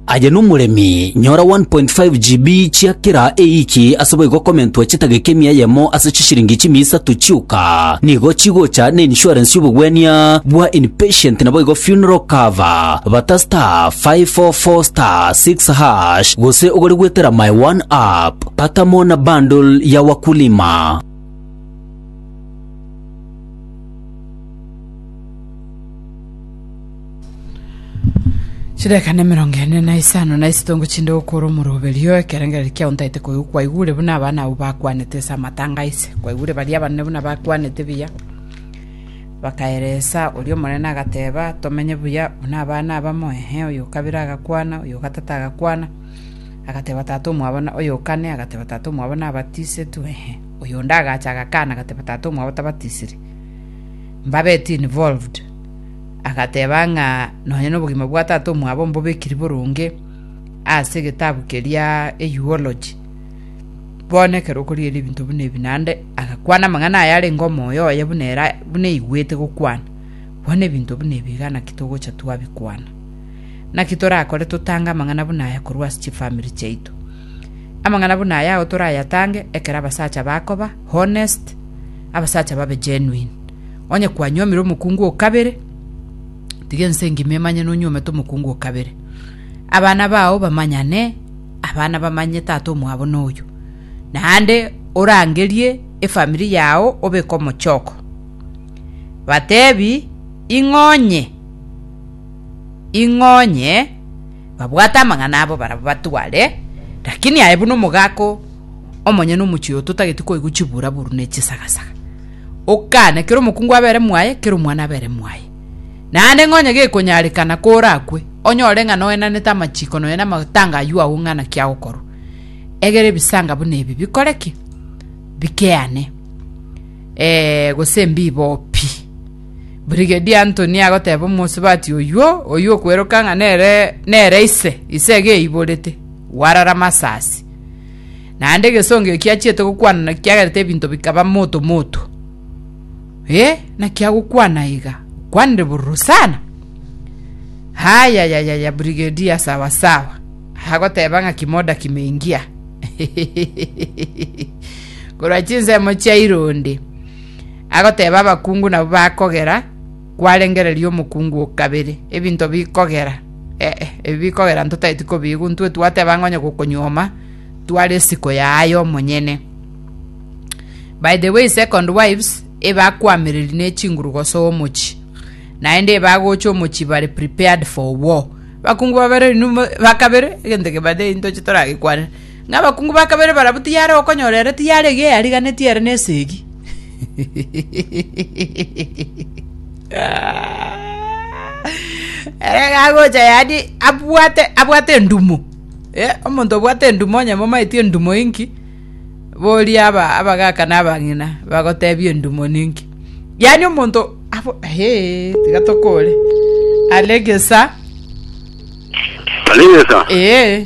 Aye nomoremi, nyora 1.5 GB chia kera eiki ase boigo komentwa chitageka emia eyemo ase chishiringi chimia isato chioka. Nigo chigocha ne insurance y'obogwenia bwa inpatient naboigo funeral cover. Bata star 544 star 6 hash gose ogore gwetera my one app. Pata mo na bundle ya wakulima. Chidakika nemerongo ene na isano na isitongo chinde gokora omoroberio ekerengere kia ontaete koigwa kwaigure buna abana abo bakwanete ase amatanga aise kwaigure baria abanene buna bakwanete buya bakaeresa oria omonene agateba tomenye buya buna abana abamo ehe oyo okabere agakwana oyo ogatata agakwana agateba tata omwabo na oyo okane agateba tata omwabo nabatisetu ehe oyo onde agacha agakana agateba tata omwabo tabatisiri mbabetie involved agateba ng'a nonya nobogima bwa Tata omwabo mbobekiri boronge ase egetabu keria Eulogy. Bono ekero okorigereria ebinto buna ebi naende, agakwana amang'ana aya arenge omoyo oye buna ere buna aigwete gokwana. Bono ebinto buna ebi iga naki togocha twabikwana. Naki torakore totange amang'ana buna aya korwa ase chifamiri chiaito. Amang'ana buna aya agwo torayatange ekero abasacha bakoba honest, abasacha babe genuine. Onye kwanyuomire omokungu o kabere, tiga ense engima emanye nonyuomete omokungu o kabere. Abana bao bamanyane, abana bamanye tata omwabo noyo. Naende orangerie efamiri yao obeke omochoko. Batebi, Ing'onye, ing'onye, babwate amang'ana abo barabwo batware, lakini aye buna omogaka omonyene omochie oyo totageti koigwa chibura-buru ne chisagasaga. Okane, kera omokungu abere mwaye, kera omwana abere mwaye. Naende ng'onye gekonyarekana korakwe, onyore ng'a noenanete amachiko nonya namatanga ayio ao ng'a naki agokorwa, egera ebisaanga buna ebi bikore ki? Bikeane, ee, gose mbibo pi. Brigadier Anthony agoteba omosubati oyio, oyio okweroka ng'a nere nere ise, ise egeiborete, warara masasi. Naende egesongio kiachiete gokwana na kiagerete ebinto bikaba moto moto. Eh, naki agokwana iga? Okwanire bororo sana. Hayayayaya, Brigadier sawa sawa. Agoteba ng'a kimoda kimeingia. Korwa chinsemo chia ironde. Agoteba abakungu nabo bakogera Kwarengereria omokungu o kabere, ebinto bikogera, ee, ebi bikogera ntotaeti kobiigwa, intwe twateba ng'a onye gokonyuoma tware esiko yaye omonyene. By the way, Second Wives ebakwamereri ne chinguru gosoa omochi, naende ebagocha omochi bare prepared for war. Abakungu babere inwe mo- bakabere, egento kebate intoche toragekwanere. Ng'a abakungu ba kabere barabwo tiyare gokonyora ere, tiyare iga eyariganetie ere na esegi. Ere iga agocha yaani abwate abwate endumo. Eh, omonto obwate endumo onye momaeti endumo inki boria aba abagaka na abang'ina bagotebia endumo ninki. Yaani omonto abo eh tiga tokore. Alegesa. Alegesa. Eh.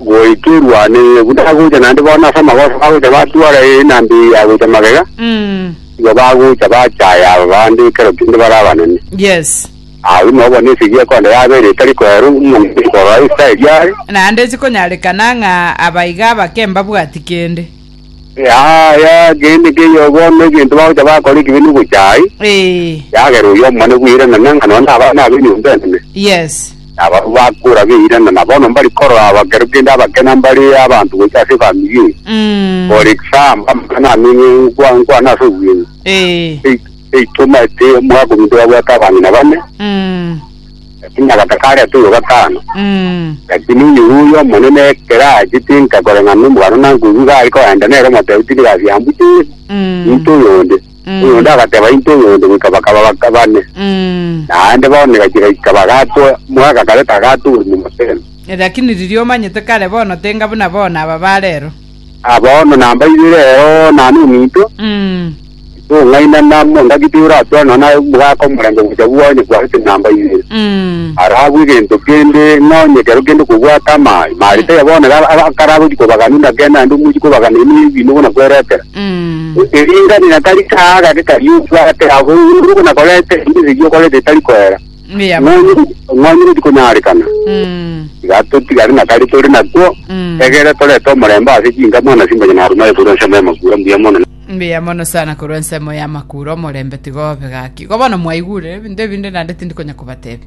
goika erwane, ee, buna agocha naende bono ase amagoso bagocha batwara ee na mbe eye yagocha magega, Mm. igo bagocha bachaya aba bande ekero kende bare abanene. Yes. Agwo ime obo nesegi ekonda yabere etari koerwa omonto korora Isiraeli are, Naende chikonyarekana ng'a abaiga abake mbabwati kende. Yaya kende keiyo bono egento bagocha bakora ekibe nogocha ai, Eh, yagera oyo omone bweiranana ng'a nonya abana abe nyomba enene. yes. Nabarabwo bakora beiranana bono mbari korora abakero kende abakena mbare abanto gocha ase efamiri eye. Mm, For example, amang'ana amenye nkwa nkwana ase obweng'u. eh, Ei- Eitoma ete omwaka ominto babwate abang'ina bane. mm, Lakini nagataka aria atoirwe gatano. Mm. Lakini oyororia omonene ekero achete enka koreng'ana nomogano na nkoigwa iga are koenda nere omotebi tindi gasiya mbuche Yesu Mm. into oyonde Mm. oyonde agateba into oyonde goika bakaba baka bane Mm. naende bono egachira goika bagatwa mwaka kareta agatwa oborimo mosemi Lakini riria omanyete kare bono tenga buna bono aba barero. Ah, bono nambairie rero nane ominto, Mm. tong'ainana mo, engaki toratware nonya naye omogaka omorembe gocha bwa onye kwarete nambairie. Mm. Arabwe egento kende ng'a onye ekero kende okobwata amaaye, mare taiyo bono ra- ra- karagochi kobagania buna kende naende omochi kobagania ime ebimo buna kweretera. Mm. Eringani na kari kaaga gete kari obwate, abo buna korete, ime erio okorete etari koera. Mbuya mono. Ng'onye ng'onye gotikonyarekana. Mm. Iga totigare na kare tore nakwo. Mm. Egere torete omorembe ase chinka mwana simbonya na Aruma ekorwa nsemo ya makura mbuya mono. Mbuya mono sana korwa ensemo ya makura omorembe tigobe gaki. Igo bono mwaigure ebinto ebinde naende tindi konya kobatebia.